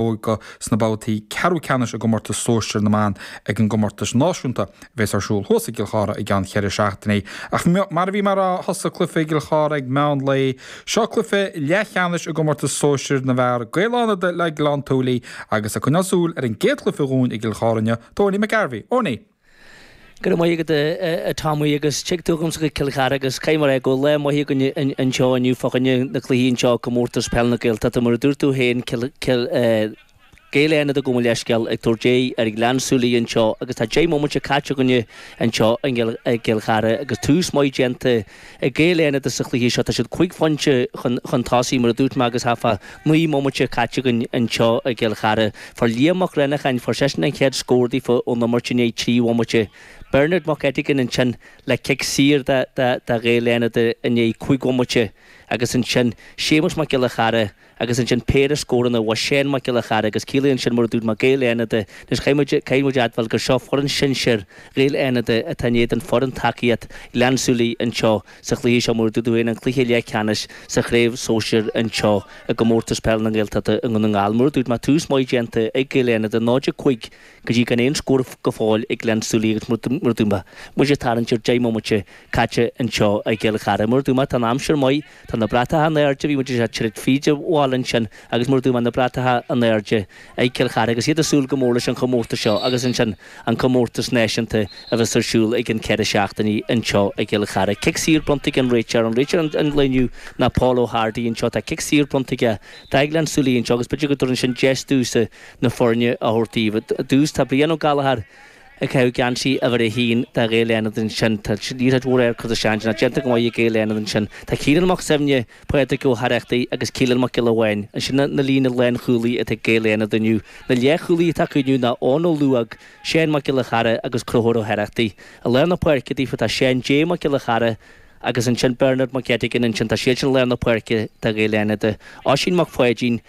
óga sna babhtaí ceathrú ceannais i gcomórtas sóisir na mban ag an gcomórtas náisiúnta a bheas ar siúl thuas i gCill Chartha i gceann cheithre seachtainí. Ach mar a bhí mar a thosaigh cluiche i gCill Chartha ag meán lae, seo cluiche leathcheannais i gcomórtas sóisir na bhfear, Gaeil Fhánada le Gleann tSúilí agus ag coinneáil súil ar an gcéad chluiche dhúinn i gCill Chartha inniu, tá Owenie McGarvey, Owenie! Go raibh maith agat a Tommy agus tig tú agamsa go Cill Chartha agus caithfidh mé a rá go bhfuil lá maith againn anseo inniu fá choinne na cluichí anseo i gcomórtas Peil na Gaeltachta mar a dúirt tú féin Cill Gaeil Fhánada gabh mo leithscéal ag tabhairt aghaidh ar Ghleann Súilí anseo agus tá deich mbomaite caite againn anseo i gCill Chartha agus tús maith déanta Ag Gaeil Fhánada sa chluiche seo, tá siad cúig phointe chun tosaigh, mar a dúirt mé, agus thart fá naoi mbomaite caite againn anseo i gCill Chartha. Fuair Liam Mac Reannacháin, fuair seisean an chéad scór daofa ón imirt i ndiaidh trí bhomaite. Bernard Mac Eiteagáin ansin le cic saor do Ghaeil Fhánada i ndiaidh cúig bhomaite agus ansin Séamus Mac Giolla Chearra, agus ansin péire scóranna uaidh Shane Mac Giolla Chearra agus ciallaíonn sin mar a dúirt mé Gaeil Fhánada, anois caithfidh muid, caithfidh muid a admháil gur seo foireann shinsir Ghaeil Fhánada atá in éadan foireann tacaíocht Ghleann tSúilí anseo sa chluiche seo mar a dúirt tú féin an cluiche leathcheannais sa chraobh sóisir anseo i gcomórtas peil na nGaeltachta i nDún na nGall mar a dúirt mé tús maith déanta ag Gaeil Fhánada 0, 5 go dtí gan aon scór go fóill ag Gleann tSúilí agus mar a dúirt mé muid ag tarraingt ar 10 mbomaite caite anseo i gCill Chartha mar a dúirt mé tá an aimsir maith Tá na bratacha in airde, bhí muid ag teacht fríd an bhaile ansin agus mar a dúirt mé na bratacha in airde ag Cill Chartha agus iad ag súil go mór leis an chomórtas seo agus ansin an comórtas náisiúnta a bheas ar siúl i gceann ceithre seachtainí anseo i gCill Chartha. Cic saor bronnta ag an réiteoir, an réiteoir an lae inniu ná Paul Ó hArdaigh anseo, tá cic saor bronnta aige do Ghleann tSúilí anseo agus b'fhéidir go dtabharfaidh sin deis domhsa na foirne a thabhairt daoibh. Ar dtús tá Brian Ó Gallchóir ag caitheamh geansaí uimhir a haon do Ghaeil Fhánada ansin. Tá líomhaintí móra ar Curtis Jansen, ach déanta go maith ag Gaeil Fhánada ansin. Tá Ciarán Mac Suibhne, Pádhraic Ó hAireachtaigh agus Keelan Mac Giolla Bháin ansin an líne lánchúlaí atá ag Gaeil Fhánada inniu. Na leathchúlaí atá acu inniu ná Eoin Ó Luaigh, Seán Mac Giolla Chearra agus Conchúr Ó hAireachtaigh. I lár na páirce daofa tá Seán J. Mac Giolla Chearra agus ansin Bernard Mac Eiteagáin ansin. Tá siadsan i lár na páirce do Ghaeil Fhánada. Oisín Mac Pháidín.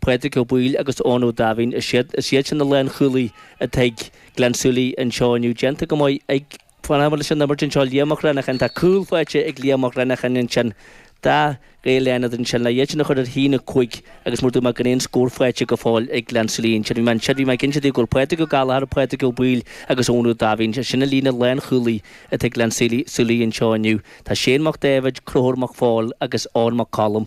Pádraig Ó Baoill agus Eoin Ó Daimhín, is iad is iad sin na lánchúlaí atá ag Gleann tSúilí anseo inniu. Déanta go maith ag Fan amuigh leis an imirt anseo Liam Mac Reannacháin. Tá cúl faighte ag Liam Mac Reannacháin ansin. Do Ghaeil Fhánada ansin. Le iad sin a chur ar a haon 5 agus mar a dúirt mé gan aon scór faighte go fóill ag Gleann tSúilí ansin. Bhí mé ansin, bhí mé ag inse daoibh go bhfuil Pádraig Ó Gallchóir, Pádraig Ó Baoill agus Eoin Ó Daimhín, is é sin an líne lánchúlaí atá ag Gleann tSúilí anseo inniu. Tá Shane Mac Dáibhéid, Conchúr Mac Phóil agus Eoin Mac Coluim.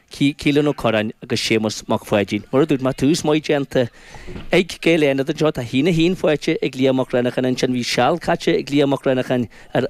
Keelan Ó Corráin agus Séamus Mac Pháidín. Mar a dúirt mé, tús maith déanta ag Gaeil Fhánada anseo. Tá a haon a haon faighte ag Liam Mac Renneacháin ansin. Bhí seal caite ag Liam Mac Renneacháin ar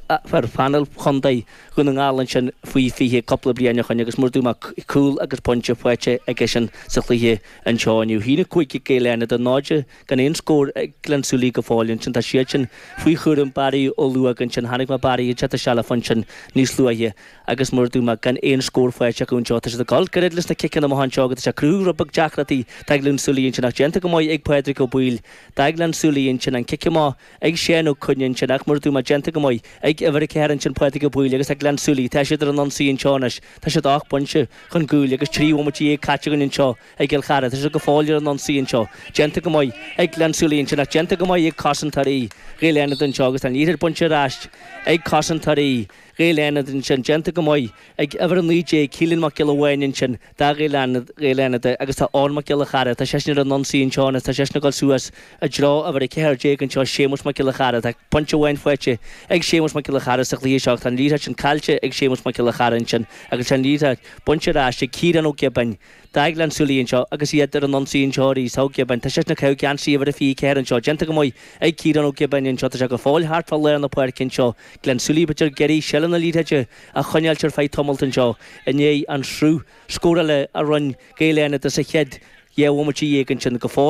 phainéal chontae Dhún na nGall ansin faoi 20 cúpla bliain ó shin agus mar a dúirt mé, cúl agus pointe faighte aigesean sa chluiche anseo inniu. A haon a cúig ag Gaeil Fhánada, 0 gan aon scór ag Gleann tSúilí go fóill ansin. Tá siad sin faoi chúram Barry Ó Luóg ansin. Chonaic mé Barry anseo do Sealafa ansin níos luaithe. agus mar a dúirt mé gan aon scór faighte acu anseo, tá siad ag dul gairid leis na ciceanna amach anseo agus tá sé ag cruthú giota beag deacracht do Ghleann tSúilí ansin ach déanta go maith ag Pádraig Ó Baoill do Ghleann tSúilí ansin an cic amach ag Seán Ó Coinn ansin ach mar a dúirt mé déanta go maith ag uimhir a ceathair ansin Pádraig Ó Baoill agus Gleann tSúilí. Tá siad ar an ionsaí anseo anois. Tá siad ocht bpointe chun gcúil agus trí bhomaite dhéag caite againn anseo i gCill Chartha. Tá siad go fóill ar an ionsaí anseo. Déanta go maith ag Gleann tSúilí ansin ach déanta go maith ag cosantóirí Ghaeil Fhánada anseo agus tá an liathróid bainte ar ais ag cosantóirí Ghaeil Fhánada ansin, déanta go maith ag uimhir 19, Caolán Mac Giolla Bháin ansin, do Ghaeil Fhánada, Gaeil Fhánada agus tá Eoin Mac Giolla Chearra, tá seisean ar an ionsaí anseo anois, tá seisean ag dul suas i dtreo uimhir 14 anseo, Séamus Mac Giolla Chearra, tá pointe amháin faighte ag Séamus Mac Giolla Chearra sa chluiche seo ach tá an liathróid sin caillte ag Séamus Mac Giolla Chearra ansin agus tá an liathróid bainte ar ais ag Ciarán Ó Giobáin, do Ghleann tSúilí anseo agus iad ar an ionsaí anseo arís, tá Ó Giobáin, tá seisean ag caitheamh geansaí uimhir a 24 anseo, déanta go maith ag Ciarán Ó Giobáin anseo, tá sé go fóill thart fá lár na páirce anseo, Gleann tSúilí b'fhéidir ag iarraidh seilbh na liathróide a choinneáilt ar feadh tamalt anseo i ndiaidh an sruth scórála a rinn Gaeil Fhánada sa chéad dhá bhomaite dhéag ansin go fóill.